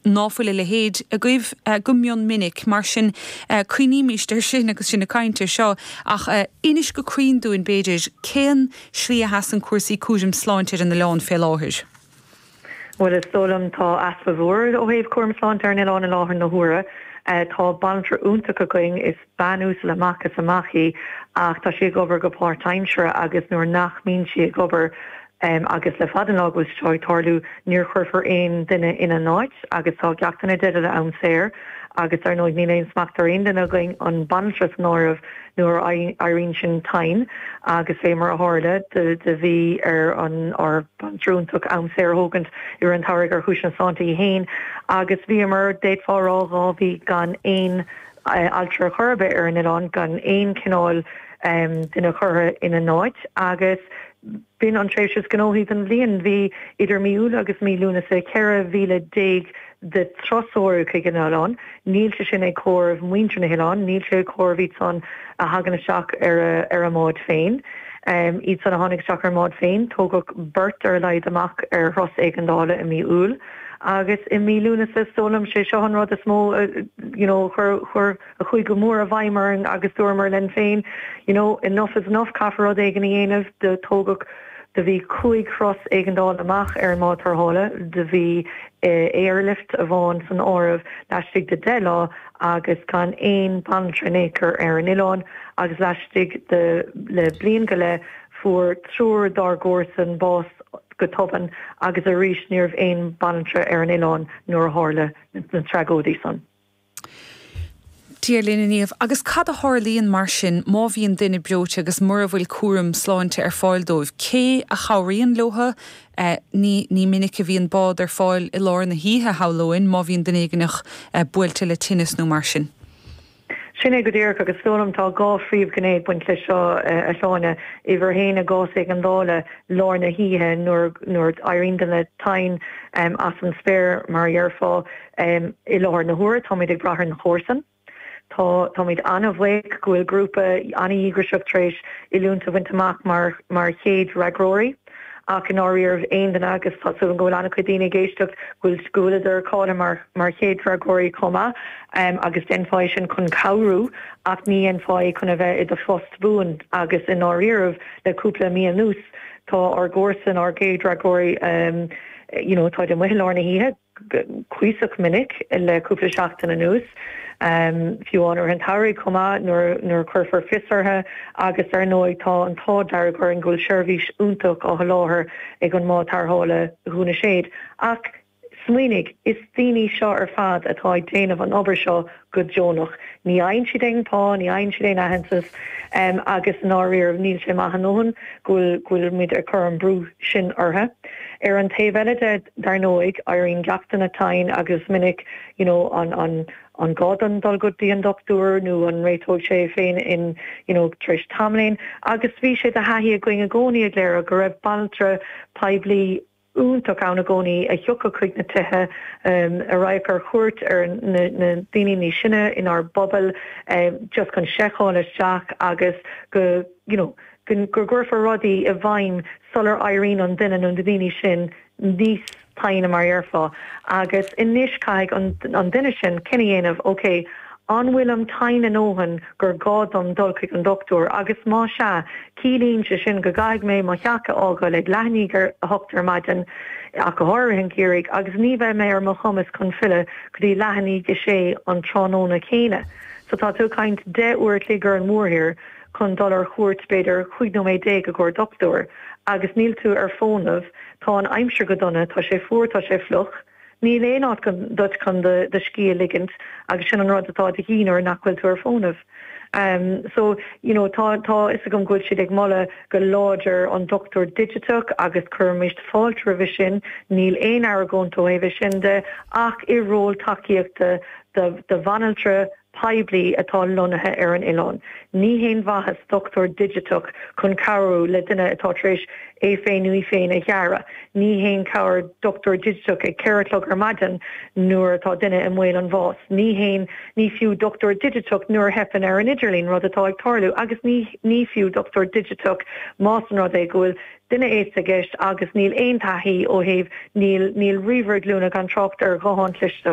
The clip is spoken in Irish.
ná fuil a leithéid agaibh go mion minic. Mar sin, cuimhnímíst ar sin agus sinn ag caint ar seo, ach inis go cruinn dúinn, b'fhéidir, cén slí a sheasann cúrsaí cúraim sláinte ar an oileán fé láthair? Bhuel, is dóigh liom, tá easpa mhór ó thaobh cúram sláinte ar an oileán i láthair na huaire. Tá banaltra iontach againn, is bean uasal amach is amach í, ach tá sí ag obair go páirtaimseartha agus nuair nach mbíonn sí ag obair, Um, agus le fada an lá go bhfuil sé seo ag tarlú, ní chuirfear aon duine ina háit, agus tá ag teacht i dteideal am saor, agus dar ndóigh, níl aon smacht ar aon duine againn, an bhanaltra san áireamh, nuair a éiríonn sinn tinn, agus fé mar a tharla, do, do bhí ar an, ár mbanaltra iontach am saor a thógaint i rith an tsamhraidh ar chúiseanna sláinte í féin, agus bhíomar, d'fhéadfá a rá, dhá mhí gan aon eh, altra ar chor ar bith ar an oileán, gan aon chineál, um, duine curtha ina háit, agus. B'in an tréimhse is gnóthaí den bhliain. Bhí idir mí Iúil agus mí Lúnasa 14,000 de thurasóirí chuig an oileán. Níl sé sin ag comhaireamh muintir an oileáin, níl sé ag comhaireamh iad san a thagann isteach ar a mbáid féin. Iad san a tháinig isteach ar a mbáid féin, tógadh beirt ar a laghad amach ar thuras éigeandála i mí Iúil. Agus i mí Lúnasa, is dóigh liom, sé seo an rud is mó a chuir, a chuaigh go mór i bhfeidhm orainn agus dúramar linn féin you know enough is enough, caithfear rud éigin a dhéanamh, do tógadh, do bhí cúig thuras éigeandála amach ar an mbád tarrthála, do bhí airlift amháin san áireamh laistigh de 10 lá agus gan aon bhanaltra in aon chor ar an oileán agus laistigh de le bliain go leith fuair triúr dár gcomharsan bás go tobann agus arís ní raibh aon bhanaltra ar an oileán nuair a tharla na tragóidí san. Dia linn a Niamh. Agus cad a tharlaíonn mar sin má bhíonn duine breoite agus mura bhfuil cúram sláinte ar fáil dóibh? Cé a chabhraíonn leo? Ní ní minic a bhíonn bád ar fáil i lár na hoíche, shamhlóinn, má bhíonn duine éigneach buailte le tinneas nó mar sin. Sin é go díreach, agus is dóigh liom tá dhá phríomhghné ag baint leis seo, a Shláine. Uimhir a haon, i gcás éigeandála, lár na hoíche, nuair nuair éiríonn duine tinn as an spéir, mar a déarfá, I láthair na huaire táimid ag brath ar na comharsan. Táimid an-bhuíoch go bhfuil grúpa an-dhíograiseach tar éis oiliúint a bhaint amach mar chéad fhreagróirí ach i ndáiríribh aon duine, agus tá súil agam go bhfuil an-chuid daoine ag éisteacht, go bhfuileadar cáilithe mar chéad fhreagróirí chomh maith agus dhéanfá é sin chun cabhrú ach ní dhéanfá é chun a bheith i do phost buan agus i ndáiríribh le cúpla mí anuas tá ár gcomharsain, ár gcéad fhreagróirí, you know, táid amuigh i lár na hoíche. cuíosach minic le cúpla seachtain anuas, fiú amháin i rith an tsamhraidh chomh maith nuair a chuirfear fios orthu agus ar ndóigh tá an t-ádh dearg orainn go bhfuil seirbhís iontach á sholáthar ag an mbád tarrthála Dhún na Séad. Ach smaoinigh, is daoine seo ar fad atá ag déanamh an obair seo go deonach. Ní fhaigheann siad aon phá, ní fhaigheann siad aon aitheantas agus i ndáiríre níl sé maith a ndóthain go bhfuil muid ag cur an brú sin orthu. Ar an taobh eile de, dar ndóigh, éiríonn daoine tinn agus minic you know an gá dom dul go dtí an dochtúir nó an réiteoidh sé é féin in you know tar éis tamaillín agus bhí sé de thaithí againn i gcónaí i gCléire go raibh banaltra poiblí iontach ann i gcónaí a thiocfadh chuig na tithe a raghadh ar chuairt ar na daoine níos sine inár bpobail just chun seiceáil isteach agus go you know go gcuirfear rudaí i bhfeidhm sular éiríonn an duine nó na daoine sin níos tinne mar a dhéarfá agus anois caithfidh an duine sin cinneadh a dhéanamh, okay. An bhfuilim tinn a ndóthain gur gá dom dul chuig an dochtúir agus má sea, ciallaíonn sé sin go gcaithfidh mé mo theach a fhágáil ag leath i ndiaidh a hocht ar maidin, ach go háirithe i rith an gheimhridh, agus ní bheidh mé ar mo chumas chun filleadh go dtí leath i ndiaidh a sé an tráthnóna céanna. So tá tú ag caint deich uair a chloig ar an mórthír chun dul ar chuairt, b'fhéidir, cúig nóiméad déag i gcomhair dochtúir agus níl tú ar fónamh, tá an aimsir go dona, tá sé fuar, tá sé fliuch. Níl aon áit duit chun do scíth a ligint agus sin an rud atá de dhíth nuair nach bhfuil tú ar fónamh. So, you know, tá, tá fhios agam go bhfuil siad ag moladh go láidir an dochtúir digiteach agus cuirimid fáilte roimhe sin, níl aon argóint ó thaobh é sin de, ach i ról tacaíochta do, do bhanaltra, poiblí atá lonnaithe ar an oileán. Ní haon mhaitheas dochtúir digiteach chun cabhrú le duine atá tar éis é féin nó í féin a ghearradh. Ní haon chabhair dochtúir digiteach ag ceithre a chlog ar maidin nuair atá duine i mbaol an bháis. Ní haon ní fiú dochtúir digiteach nuair a theipeann ar an idirlíon, rud atá ag tarlú. Agus ní ní fiú dochtúir digiteach más an rud é go bhfuil duine aosta i gceist agus níl aon taithí ó thaobh níl níl ríomhaire glúine gan trácht ar ghuthán cliste.